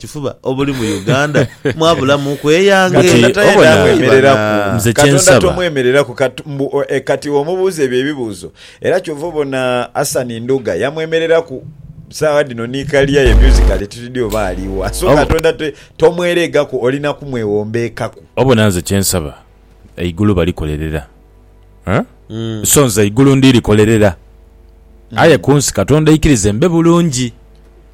kifuba obuli mu Uganda mwabulamu ku eyange. Kati Katonda obona- tayendamwemereraku. Bana. Nze Katonda kyensaba. tomwemereraku kat- mbu, o- eh, kati omubuuza ebyo ebibuuzo era kyova obona Asani Ndhuga yamwemereraku saagha dhino ni kaliya ye musically tutidhi oba aliwa so Obo- Katonda te- tomwereegaku olina kumwewombeekaku. Obona nze kyensaba eigulu balikolerera, eh? Mm. so nze eigulu ndirikolerera, aye ku nsi Katonda aikirize mbe bulungi.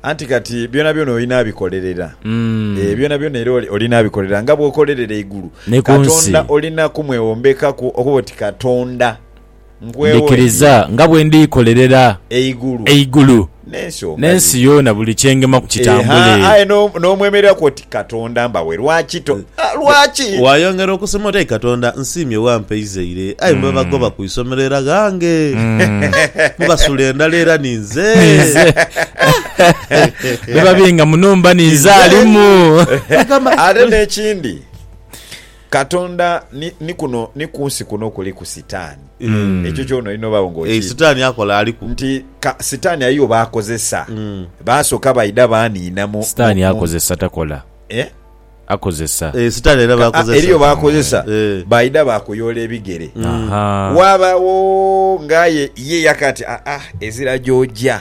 Anti kati byonabyona olina abikolerera, Mm. eh, byonabyona era oli- olina abikolerera nga bw'okolerera eigulu. Ni ku nsi. Katonda olina kumwewombekaku okuba oti Katonda Ndhikiriza nga bwe ndiikolerera eigulu n'ensi yoona buli kye ngema ku kitambule. Waayongera okusema oti, Ayi Katonda, nsiimye wampa eizaire. Aye mu babagoba ku isomero era ghange, mu basula endhala era ninze. Bwe babinga mu nhumba ninze alimu. Ate n'ekindi. Katonda ni, ni kuno, ni ku nsi kuno kuliku Sitaani. Ekyo kyona olina obaagho nga Eeh, okiidhi. Sitaani akola, aliku. Nti, ka, Sitaani ayiyo b'akozesa. Baasooka baidha baaniina mu, mu, Sitaani mu. akozesa, takola. Eh? Akozesa. Eeh, Sitaani alina Ka, a, b'akozesa. eriyo b'akozesa. Eeh. Baidha baakuyoola ebigere. Ahaa. Waabagho nga aye ye yaka ati, Aa, ezira gy'oja.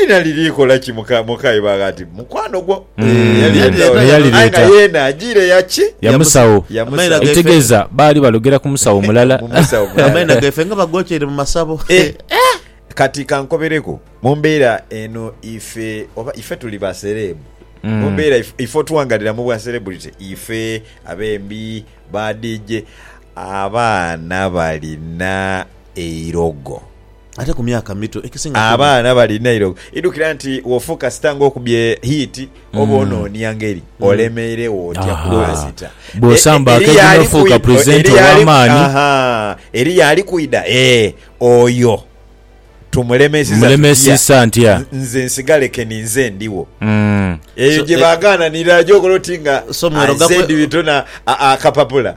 Lina liri kola ki muka muka iba ghati mukwano gwo. Mm. Yali Yali leta. Naye yali Aye nga leta. yena ajire yaki. Ya musawo. Ya Amaina musawo. gaife. Ekitegeza baali balogera ku musawo mulala. Mu musawo mulala. Amaina gaife nga bagokyere mu masabo. Eh, Kati kankobereku mumbeera eno ife oba ife tuli ba sereebu Mm. mumbeera if- ife otuwangalira mu bwa celebrity ife abembi ba DJ abaana balina eirogo Ate ku myaka mito ekisinga kuba. Abaana balina eirobo. Idhukira nti wofokasita ng'okubye hiiti mm. oba onoonia ngeri mm. olemeiregho otya kubasita. E, Bw'osamba e, akedi n'ofuuka pulezidenti ow'amaani. Eriyo ali kwidha ee oyo tumulemesisa ntya nze nsigale keni nze ndiwo mm. eyo gye eh, bagaananira gyokola oti nga azedibitona akapapula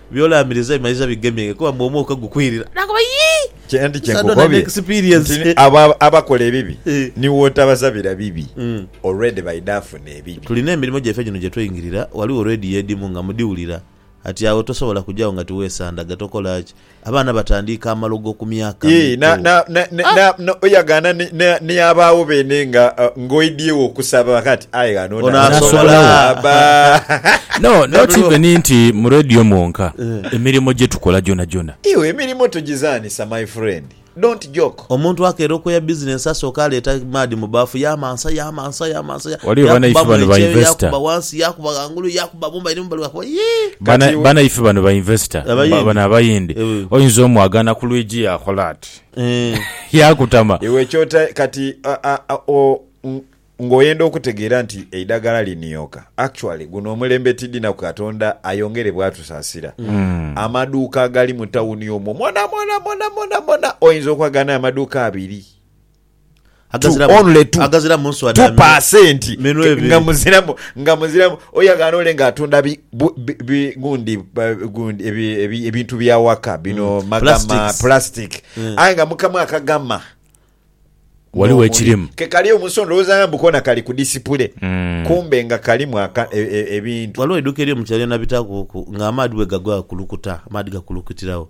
By'olaamiriza bimayiza bigemyenge kuba mbu omwoka gukwirira. Naakoba, Yii! Kye ndi kye nkukobye nti abo abakola ebibi ni w'otabasabira bibi, olwedi baidha afuna ebibi. Tulina emirimo gyaife gino gye tweingira, ghaligho leediyo edhimu nga mudhiwulira. Kati agho tosobola kugyagho nga tiweesandaga. Tokola ki? Abaana batandiika amalogo ku myaka mito. Yii, n'oyagaana ni abaagho beene nga. Ng'oidhie wo okusaba ghati, aye ghano onaasobola bba? No, not even nti mu Radio mwonka, emirimo gye tukola gyonagyona. Iwe emirimo togizanhisa my friend. Don't joke. Omuntu akeera okoya business asooke aleeta maadhi mu baafu yaamansa, yaamansa, yaamansa, ya, Waliwo banaife yaakuba bano mule ba kyeyo, investor. yaakuba wansi, yaakuba ghangulu, yaakuba mumba eri mumbali, yaakuba yii! Bana- Kati we- banaife bano ba investor, Abayindi. bano abayindi, Eh. oyinza omu agaana ku lwigi yaakola ati. yaakutama. Iwe ky'ota kati ng'oyenda okutegeera nti eidagala linioka. Actually guno omulembe tidinaku Katonda ayongere bwatusaasira. Amaduuka agali mu tawuni omwo mwonamwona mwonamwonamwona oyinza okwaganayo amaduuka abiri. tu only tu tu percent nga muziramu nga muziramu oyo agana ole nga atunda bi bi gundi gundi ebintu bya waka bino mm. magama plastic mm. aye nga mukamu akagama waliwo ekirimu kekali omunsi ondowooza nga mbukona kali ku disipule mm. kumbe nga kalimu e, e, ebintu waliwo eduka eri omukyalo yona bitakuku nga amaadi bwegagwa gakulukuta amaadi gakulukutirawo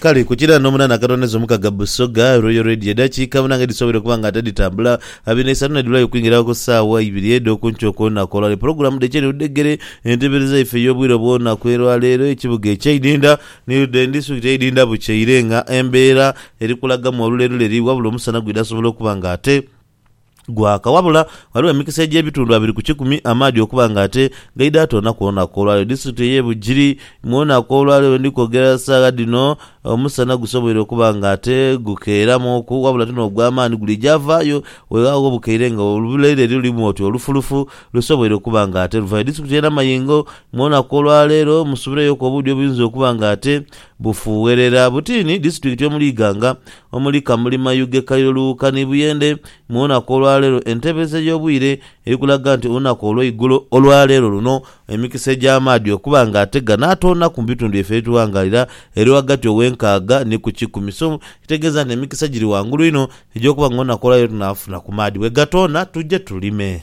Kale ku kira n'omunaana akatondezo mukaga Busoga, Royal Radio, edhakiika munaana edhisoboire okuba nga ate dhitambula, abiri n'eisatu n'edhulayo okwingirawo ku saawa ibiri edh'okunkyo okw'olunaku olwaleero. Pulogulaamu dh'ekiro ni ludhegere, entebereza yaife ey'obwire obw'olunaku elwaleero, ekibuga eky'eidinda ni ludheri ni disitulikiti y'eidinda bukyeire nga embeera eri kulagamu olulerule eri wabula omusana gwidha sobola okuba nga ate. Gwaka. Wabula ghaligho emikisa egy'ebitundu abiri ku kikumi amaadhi okuba nga ate gaidha toona kwona kw'olwaliro. Disitulikiti ey'e Bugiri, Mwona kw'olwaliro we ndi kwogera saagha dhino omusana gusoboire okuba nga ate gukeeramuuku wabula ti n'ogw'amaani guliija vaayo weeghagho bukeire nga oluleire lulimu oti olufulufu lusoboire okuba nga ate luvayo. Disitulikiti y'e Namayingo, Mwona kw'olwaleero musubireyoku obuudhi obuyinza okuba nga ate bufuuwerera butiini. Disitulikiti omuli Iganga, omuli Kamuli Mayuge Kairo Luuka ni Buyende mu lunaku olwaleero enteebereza ey'obwire eri kulaga nti olunaku olweigulo olwaleero luno emikisa egy'amaadhi okuba nga ate ganaatoonaku mu bitundu byaiffe ebitughangaalira eri ghagati ow'enkaaga ni ku kikumi so kitegeeza nti emikisa giri ghangulu inho egy'okuba nga olunaku olwaleero tunaafuna ku maadhi bwegatoona tuje tulime.